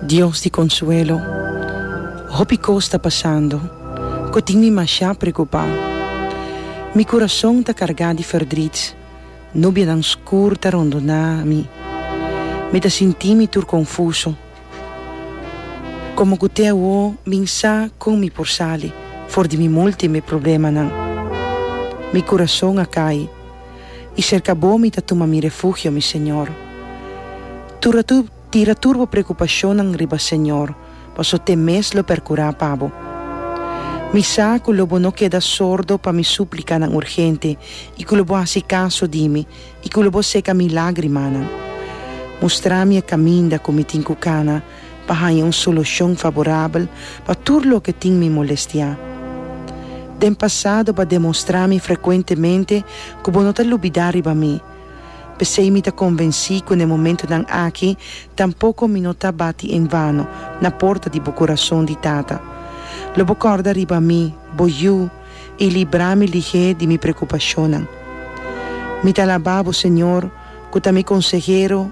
Dios di konsuelo, hopi kos ta pasando ku tin mi mashá preokupá. Mi kurason ta kargá di fèrdrit, nubianan skur ta rondoná mi, mi ta sinti mi tur konfuso. Komo ku te awo min sa kon mi por sali for di mi multiple problemanan? Mi kurason a kai. i sherka bo mi ta tuma mi refugio, mi Señor. Turatu tira tur bo preokupashonnan riba Señor, paso te mes lo perkurá pa bo. Mi sa ku lo bo no keda sordo pa mi súplikanan urgente i ku lo bo hasi kaso di mi i ku lo bo seka mi lágrimanan. Mustrá mi e kaminda ku mi tin ku kana, pa haña un solushon faborabel pa tur loke tin mi molestiá. Den pasado bo a demostrá mi frekuentemente ku bo no ta lubidá riba mi, p'esei mi ta konvensí ku na e momentunan aki tampoko mi no ta bati en vano na porta di bo kurason di tata. Lo bo kòrda riba mi, bo yu, i libra mi lihé di mi prekupashonnan. Mi ta alabá bo, Señor, ku ta mi konsehero,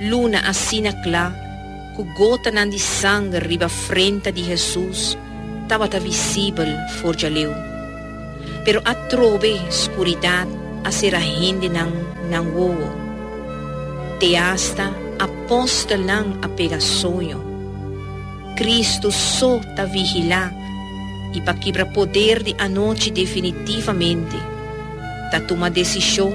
Luna asina cla cu gotanan di sanger riba frenta di Jesus tabata visibel for djaleu. Pero atrobe scuridad a cera hendenan nan wowo. Te hasta apostelnan a pega soño. Cristo so ta vigila y pa kibra poder di anochi definitivamente ta tuma decision,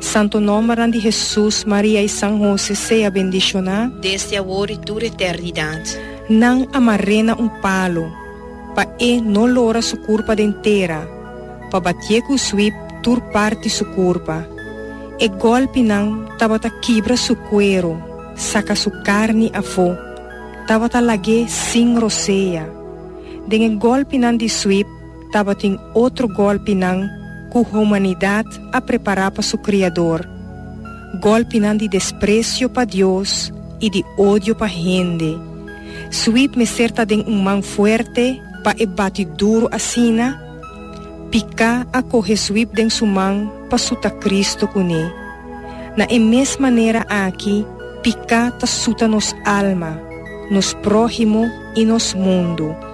Santo nombernan di Hesus, Maria i San Hose sea bendishoná. Desde awor i tur eternidat. Nan a mar'é na un palu, pa E no lora Su kurpa den tera, pa batié ku swip tur parti Su kurpa. E gòlpinan tabata kibra Su kueru, saka Su karni afó, tabata lag'é sin rosea. Den e gòlpinan di swip. Tabatin otro gòlpinan ku humanidat a prepará pa su Kriador, gòlpinan di despresio pa Dios i di odio pa hende. Sweet mester ta den un man fuerte pa e bati duru asina? Piká a kohe Sweet den su man pa suta Kristu kuné. Na e mes manera aki, piká ta suta nos alma, nos próhimo i nos mundu.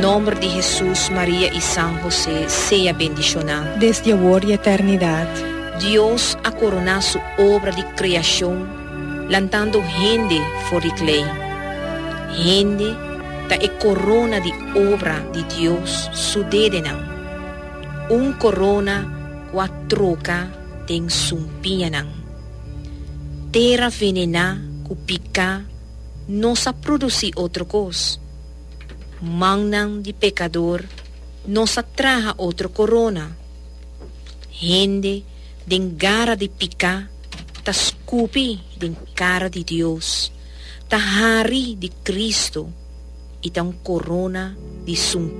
Nomber di Hesus Maria i San Hosé sea bendishoná. Desdi awor i eternidat. Dios a koroná su obra di kreashon lantando hende for di klei. Hende ta e korona di obra di Dios su dedenan, un korona ku a troka den sumpiñanan. Tera venená ku piká no sa produsí otro kos. mannan di pekador nos a traha otro korona. Hende den gara di piká ta skupi den kara di Dios, ta hari di Kristu i ta un korona di.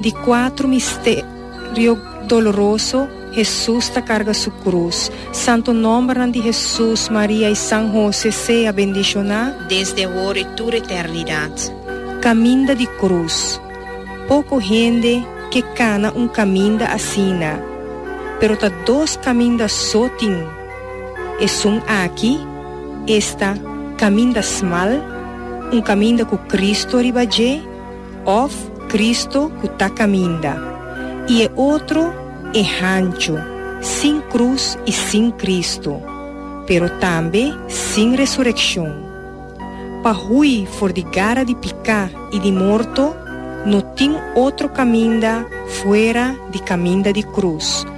Di kuatro misterio doloroso, Hesus ta karga su krus. Santo nòmbernan di Hesus, Maria i San Hose sea bendishoná. Desde awor i tur eternidat. Kaminda di krus. Poko hende ke kana un kaminda asina, pero ta dos kaminda so tin. Esun aki, esta, kaminda smal, un kaminda ku Kristu riba dje, Òf Kristu ku ta kaminda, i e otro e hanchu, sin krus i sin Kristu, pero tambe sin resurekshon. Pa hui for di gara di piká i di morto, no tin otro kaminda fuera di kaminda di krus.